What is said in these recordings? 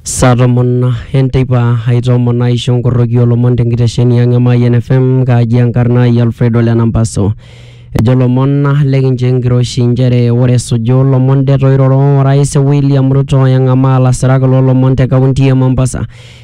Saa tomon enteipa aitoomon aisho nkoroki olomon tenkitesheni ang' e Mayian FM kaaji enkarna ai Alfredo Lenampaso. Ejo lomon lekincho enkiroshi nchere ore esuju lomon det oiroro orais William Ruto eng'amaa lasirak loo lomon te kaunti e Mombasa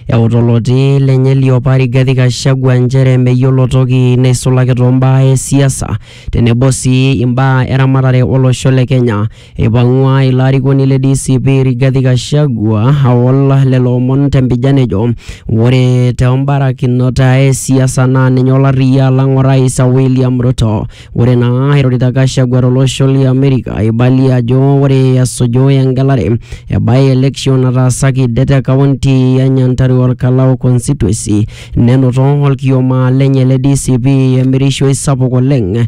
euta oloti lenye liopa Rigathi Gachagua nchere meyiolo toki neisulaki too mbaa e siasa tenebo sii imbaa e ramatare olosho le Kenya. Eipang'ua ilo arikoni le DCP Rigathi Gachagua aol lelo omon tempijan ejo ore toombarakinot e siasa naa ninye olarriyia alang orais William Ruto. Ore naa eirorita Gachagua tolosho le Amerika eibalie ajo ore esuju engelare e by election nataasaki det e kaunti e Nyantarua Olkalau Constituency nenoto olkioma lenye le DCP emirishoi sapuk oleng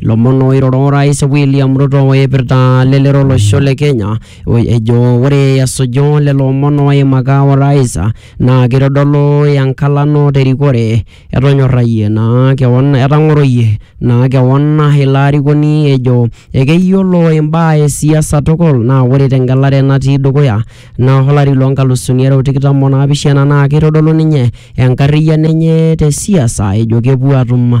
Ilomon oiroro orais William Ruto oipirta lelero olosho le Kenya o- ejo ore esuju lelo omon oimaka orais naa keitodolu enkalano terikore etonyorrayie naa kewon etang'oroyie naa kewon ilo arikoni ejo ekeyiolo imbaa e siasa tukul naa ore tengelare natii dukuya naa olari loo nkalusuni are o tikitam o naapishana naa keitodolu ninye enkarriyiano enye te siasa ejo kepuo atum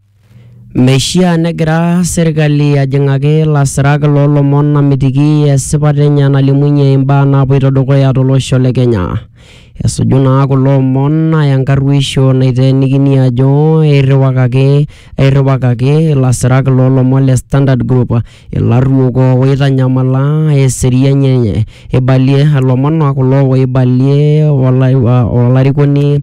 Meishiaa negira serkali ajing'aki lasirak loo lomon amitiki esipata enye nalimunye imbaa naapoito dukuya to losho le Kenya. Esuju naa kulo omon enkarruisho naiteenikini ajo eirriwakaki eirriwakaki ilasirak loo lomon le Standard Group. Ilarruok oitanyamala eseriani enye. Eibalie ilomon kulo oibalie olarikoni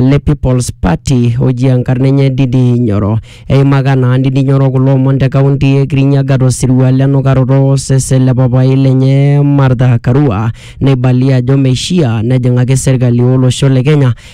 le People's Party oji enkarna enye Ndindi Nyoro. Eimaka naa Ndindi Nyoro kulo omon te kaunti e Kirinyaga to sirua le nukaroto o sesen le papaai lenye Martha Karua neibalie ajo meishia nejing'aki serkali o losho le Kenya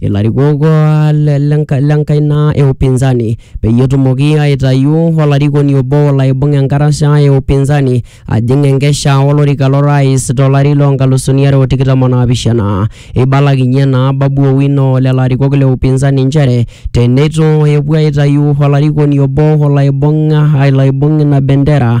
ilarikok uh, le- lenka- lenkaina e upinzani peyie etumoki aitayu olarikoni obo olo aibung enkarasha e upinzani ajing enkesha olorika lorais tolari loo nkalusuni are o tikitam o naapishana eibalakinyie naa babu owino lelo arikok le upinzani nchere teneitu epuo aitayu olarikoni obo olo aibung olo aibung ina bendera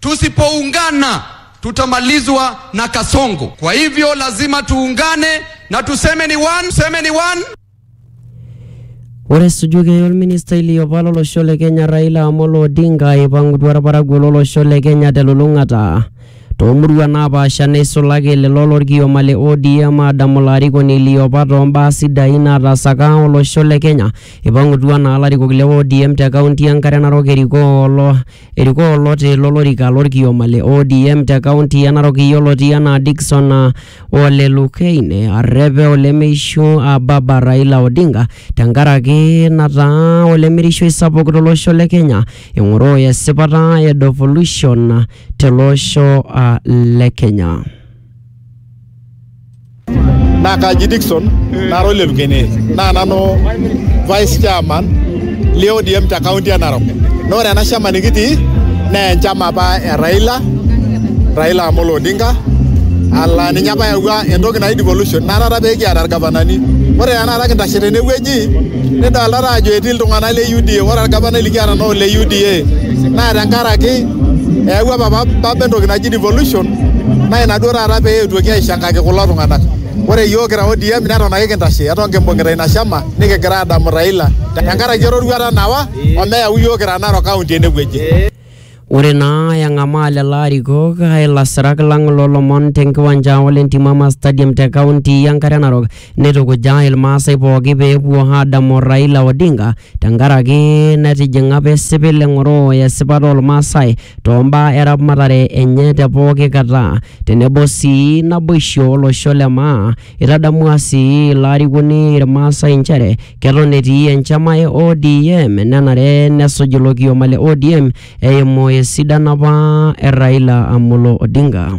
Tusipoungana tutamalizwa na Kasongo. Kwa hivyo lazima tuungane na tuseme ni one, tuseme ni one. Ore esujuki olministai liopa lolosho le Kenya Raila Amolo Odinga eipangutua olparakuo lolosho le Kenya telulung'ata toomuruan naapaasha neisulaki lelo lolkioma le ODM aadamu olarikoni liopa toombaa sidain naataasaka olosho le Kenya. Eipangutua naa larikok le ODM te kaunti e Nkare Narok erikoo olo Erikoo oloti lo lorika lo lkioma le ODM te kaunti e Narok yioloti anaa Dickson Ole Lukein arrep olemeishu Baba Raila Odinga tenkaraki nataa olemirishoi sapuk to losho le Kenya eng'oroo esipata e devolution te losho le Kenya. naa kaji Dickson nara ole Lukene naa nanu vice chairman le ODM te kaunti e Narok naa ore ena shama nikitii naa enchama apa e Raila Raila Amolo Odinga ala ninye apa eyawua entoki naji devolution naa taata pee kiata irgavanani ore tenakata kintashe tenewueji nidoltata ajo etii iltung'anak le UDA ore orgavanai likiata naa ole UDA naa tenkaraki eyawua papa entoki naji devolution naa ina duo taata pee eetuoki aishangaki kulo tung'anak. Ore iyiook kira ODM neton ake kintashe eton kimbung'ita ina shama nikigira aadamu Raila tenkaraki eroruata nawa omeyau iyiook kira Narok County enewueji. Ore naa eng'amaa lelo arikok ilasirak lang loolomon tenkiwanja ole Ntimama Stadium te kaunti enkare Narok Neitukuja Ilmaasai pooki pee epuo aadamu Raila Odinga tenkaraki netijing'a apa esipil eng'oro esipata oolmaasai toombaa eramatare enye te pooki kata tenebo sii naboisho olosho le maa. Eitadamua sii ilo arikoni Ilmaasai nchere keton etii enchama e ODM nenare nesuj ilo kioma le ODM eimu esidano apa e Raila Amolo Odinga.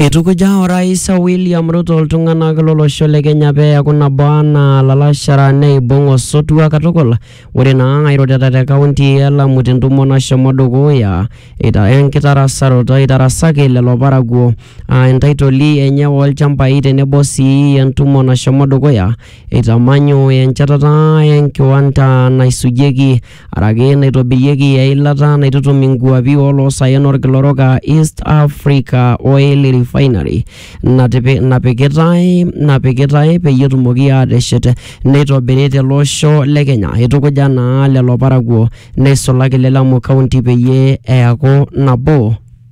Eitukuja Orais William Ruto iltung'anak lolosho le Kenya pee eaku nabo anaa lalashara neibung osotua katukul. Ore naa airorita te kaunti e Lamu tentumo nashomo dukuya ita enkitarasaroto eitarasaki lelo parakuo aa entaitoli enye oolchambai tenebo sii entumo nashomo dukuya eitamanyu enchetata enkiwanda naisujieki araki naitobirieki eilata naitutum inkuapi oloosaen olkila orok aa East Africa Oil Refinery natipi- napikitae napikitae peyie etumoki aateshet neitobiri tele osho le Kenya. Eitukuja naa lelo parakuo neisulaki le Lamu County peyie eaku nabo.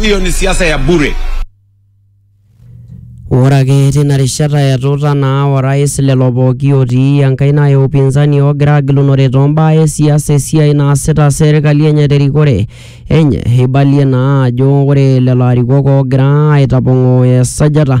hiyo ni siasa ya bure. Ore ake tina rishata etuuta naa orais lelo pooki otii enkaina e upinzani oogira agilunore too mbaa e siasa esiai naasita serkali enye terikore enye. Eibalie naa ajo ore lelo arikok oogira aitapong'oo esajata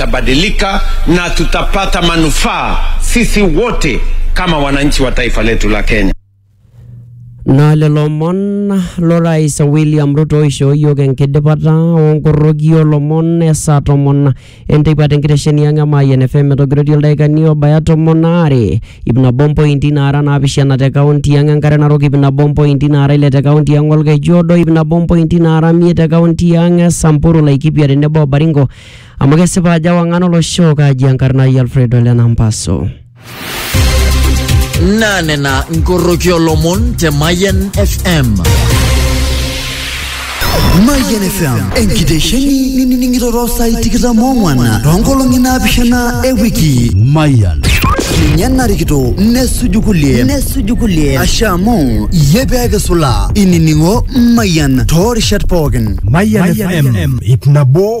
tutabadilika na tutapata manufaa sisi wote kama wananchi wa taifa letu la Kenya. Na lelo omon lorais William Ruto oishoo iyiook enkidipata onkoroki olomon esaa tomon enteipa tenkitesheni ang' e Mayian FM metogirotie ildaikani obaya tomon aare ip nabo mpointi naara naapishana te kaunti ang' enkare narok ip nabo mpointi naara ile te kaunti ang' olkeju odo ip nabo mpointi naara imiet te kaunti ang' e Samburu Laikipia tenebo o Baringo Amu kesipa ajo ewang'an olosho kaaji enkarna ai Alfredo Lenampaso. naa nena nkoroki olomon te Mayian FM. Mayian FM enkitesheni ninining'ito too saai tikitam oong'wan too nkolong'i naapishana e wiki. Mayian. Ninye narikito nesuju kulie nesuju kulie ashe amu iyie pee kisulaa inining'o Mayian too rishat pookin. Mayian FM ip nabo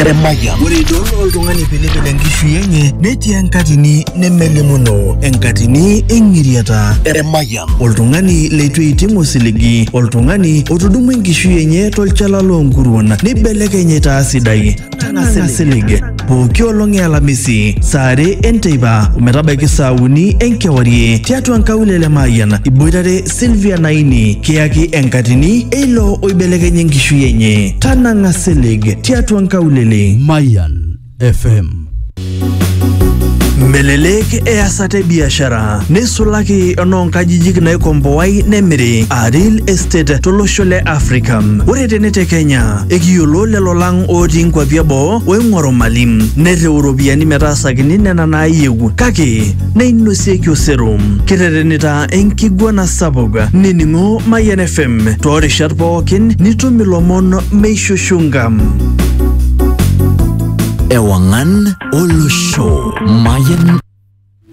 Eremaya. Ore idol oltung'ani pilipil enkishui enye netii enkatini nemelimuno, enkatini eng'iriata. Eremaya. Oltung'ani leitu eiting osiligi, oltung'ani otudumua enkishui enye tolchala loonkuruon neibelekeny aitaa sidai. Tang'asa silig. Pooki olong e Alamisi, saa are enteipa ometabaiki saa uni enkewarie tiatua nkaulele e Mayian iboitare Sylvia Naini kiyaki enkatini eilo oibelekenya enkishui enye. Tanang'a silig tiatua nkaulele. Mayan FM. Melelek easata e biashara neisulaki enoonkajijik naikomboai nemiri aa real estate tolosho le Afrika. Ore tene te Kenya, ekiyiolo lelo lang ootii nkwapi eboo oing'oru mali nereu iropiyiani metaasakini nena naayieu kake neinosieki osero. Kiterenita enkiguana sapuk nining'o Mayian FM toorishat pookin nitum ilomon meishushunga. Ewangan Olosho Mayan